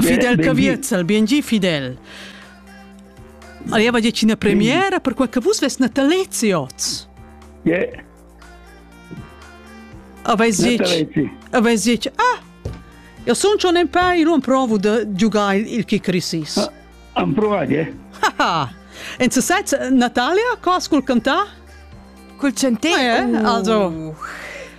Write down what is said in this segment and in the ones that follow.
Fidel Caviezel, biengi Fidel. Arriva già una premiera per quel che vus ves Natalezi oz. Yeah. Avais dit, avais dit, ah, io sono un in pei, io provo di giocare il Kikrisis. Ah, am provato, eh. Ha En se sets Natalia, cos col cantà? Col centet. Ah, eh? Also.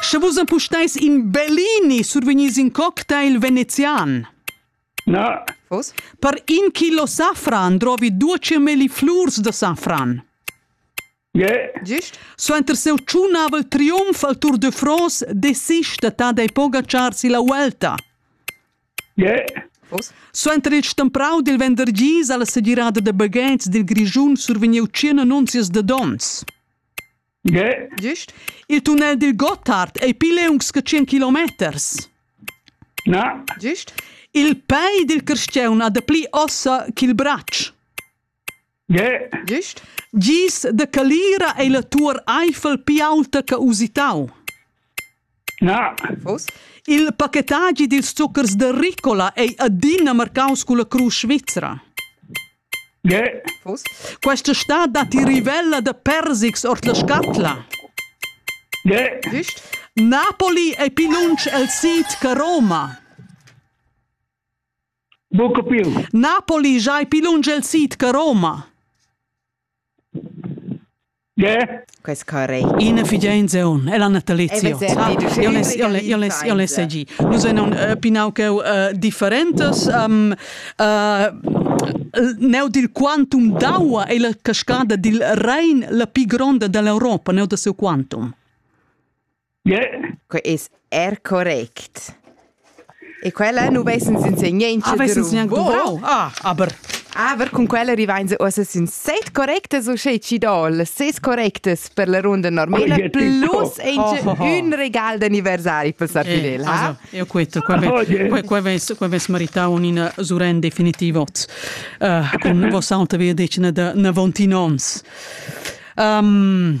Sche vus empusteis in Bellini survegnis in cocktail venezian. Na. Vos? Per in kilo safran drovi duece melli flurs da safran. Yeah. Gist? Suenter seu tschunavel triumf al Tour de France desista ta dei pogachar si la Vuelta. Yeah. Suenter il stemprau dil vendergis ha la segirada da baghetgs dil Grischun survegniu tschien annunzias da donns. Yeah. Gist? Il tunnel dil Gotthard ei pli leungs che tschien kilometers. Na. Gist? Il pei dil carstgaun ha dapli ossa ch'il bratsch. Gist? Gis da calira ei la tuor Eifel pli aulta che usitau. Na. Uss? Il pachetagi dils zucchers da Ricola ei adina marcaus culla crusch svizra. Uss? Questa stad datti rivella da persics ord la scatla. Gist? Napoli ei pli lunsch el sid che Roma. Buca più. Napoli giai pli lunsch el sid che Roma. Che? Quest carrei. Ina figlia in zeon, ella natalizio. Io le segi. Nus enon pinau che differentes um, neu dil quantum d'aua e la cascada dil Rhein la pli gronda dell'Europa, neu da seu quantum. Que es er correct. E quella nu vessens insegnaints Ah, vessens gnanc duvrau? Ah, aber. Aber cun quella rivains uossa sün set correctas uschè chi dol, ses correctas per la runda normela, Oie, tipo. plus inch ün regal d'anniversari per Sar Fidel, ha? Also, io questo, qua, ve- Oie. qua, qua ves, qua ves maritau un'ina suren definitivot uh, cun voss'alta via decina da 90 ons. Um,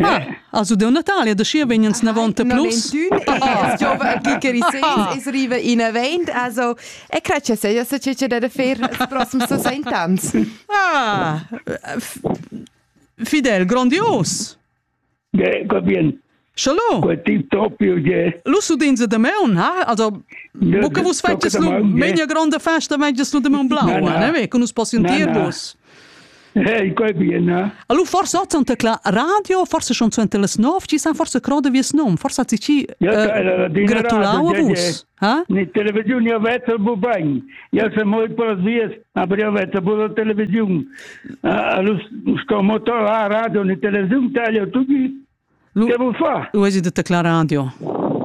Ah, also deu Natale, da schi vegnan snavon te plus. Es riva in avent, also e cre che seja se che che da fer els prossimi 60 ans. Ah, fidel, grandios. Ja, gut bien. Shalom. Quel tip topio je. Lusu din ze de meun, ha? Also Buca vus fetges lu megna gronda festa, megnas lu de meun blau, ne ve, con us possian dir vus. Hey, quei bien, eh? Allora forse hat sonta klar radio, forse schon zu las 9, ci san forse croda vies nom, forse hat sich ci gratulau a vus. Ha? Ni televizione a veta bu bagn. Io se mol por vies, aber io veta bu la televizion. Allo sto motor a radio ni televizion taglio tutti Che vuol far? Lu has detto Clara Radio.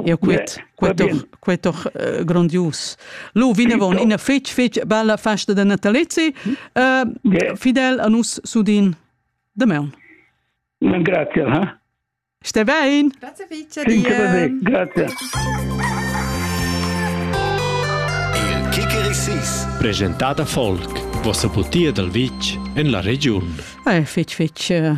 Eu quet, quet quet doch uh, grandius. Lu vinavon ina fetg fetg bella festa da natalizzi. Uh, fidel a nus sudin demaun. Non grazie, ha? Ste vein. Grazie fice dir. Grazie. Il Kikerisis presentata folk, vossa butia dal vitg en la regiun. Eh, fetch fetch uh,